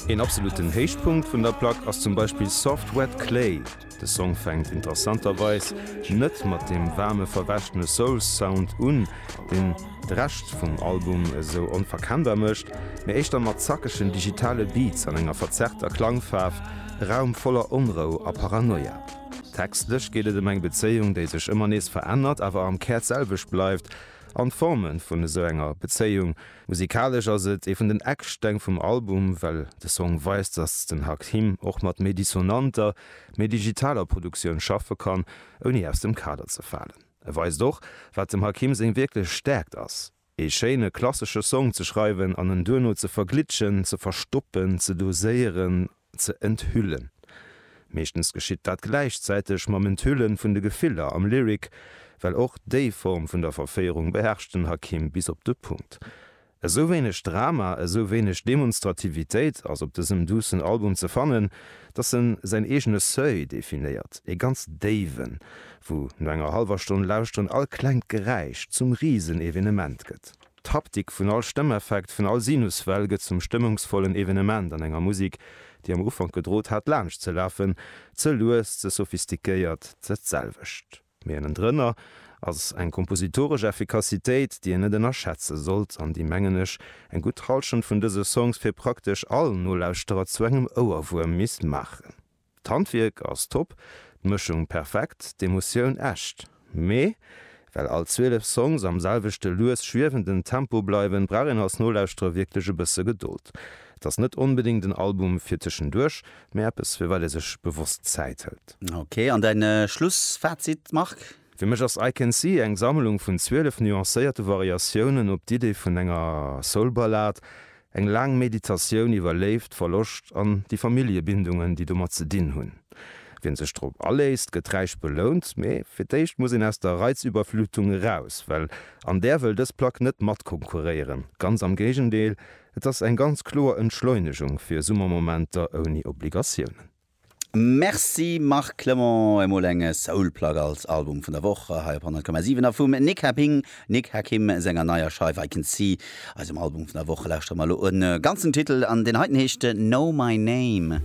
Een absoluten Héichpunkt vun der Plack ass zum Beispill Soft Wet Clay. De Song fänkt interessanterweis net mat deem waarme verwäschene Soul-Sound un, deen de Rescht vum Album esou onverkennbar mécht, mee éischter mat zackegen digitale Beats an enger verzerrter Klangfaarf, e Raum voller Onrou a Paranoia. Textlech geet et ëm eng Bezéiung, déi sech ëmmer nees verännert, awer am Kär d'selwecht bleift, an d'Forme vun esou enger Bezéiung Musikalesch ass et ee vun den Ecksteng vum Album, well de Song weist, dass den Hakim och mat méi dissonanter, méi digitaler Produktioun schaffe kann, ouni aus dem Kader ze falen. E weist och, wat dem Hakim seng wierklech Stäerkt ass, ee schéine klassesche Song ze schreiwen an en duerno ze verglitschen, ze verstoppen, ze doséieren ze enthüllen. Meeschtens geschitt dat gläichzäiteg mam Enthüllen vun de Gefiller am Lyric, well och déi Form vun der Verféierung beherrscht den Hakim bis op de Punkt. Esou wéineg Drama, esou wéineg Demonstrativitéit ass op dësem duussen Album ze fannen, dass en säin eegene Seuil definéiert, ee ganz déiwen, wou no enger hallwer Stonn Lauschteren all klengt Geräisch zum Risenevenement gëtt. D'Haptik vun all Stëmmeffekt, vun all Sinuswell gëtt zum stëmmungsvollen Evenement an enger Musik, déi am Ufank gedrot hat laanscht ze lafen, ze lues, ze sophistiquéiert, ze d'selwecht, mee ënnendrënner ass eng kompositoresch Effikassitéit, déi een net ënnerschätze sollt an déi, mengen ech, eng gutt Hallschent vun dëse Songs fir praktesch all Nolauschterer zu engem Ouerwuerm misst maachen. D'Handwierk ass top, d'Mëschung perfekt, d'Emotioun echt. Mee well all 12 Songs am selwechte lues schwiewenden Tempo bleiwen, brauch een als Nolauschterer wierklech e bësse Gedold. Et ass net onbedéngt en Album fir tëschenduerch, mee eppes firwat ee sech bewosst Zäit hëlt. Ok, an däin Schlussfazit Marc? Fir mech ass I Can See eng Sammlung vun 12 nuancéierte Variatiounen op d'Idee vun enger Soul-Ballad, eng laang Meditatioun iwwer Léift, Verloscht an déi Familljebindungen, déi domat ze dinn hunn. Wien sech drop aléisst, gëtt räich belount, mee fir d'éischt muss een aus der Reizüberflutung eraus, well an där wëll dës Plack net matkonkurréieren, ganz am Géigendeel, et ass eng ganz kloer Entschleunegung fir Summermomenter ouni Obligatiounen. Merci Marc Clement, emol eng Soul Plug als Album vun der Woch hei op 100,7 a vum Nick Happing, Nick Hakim, senger neier Scheif I Can See. Eisem Album vun der Woch lauschtere mer elo en ganzen Titel an, deen heiten heescht No My Name.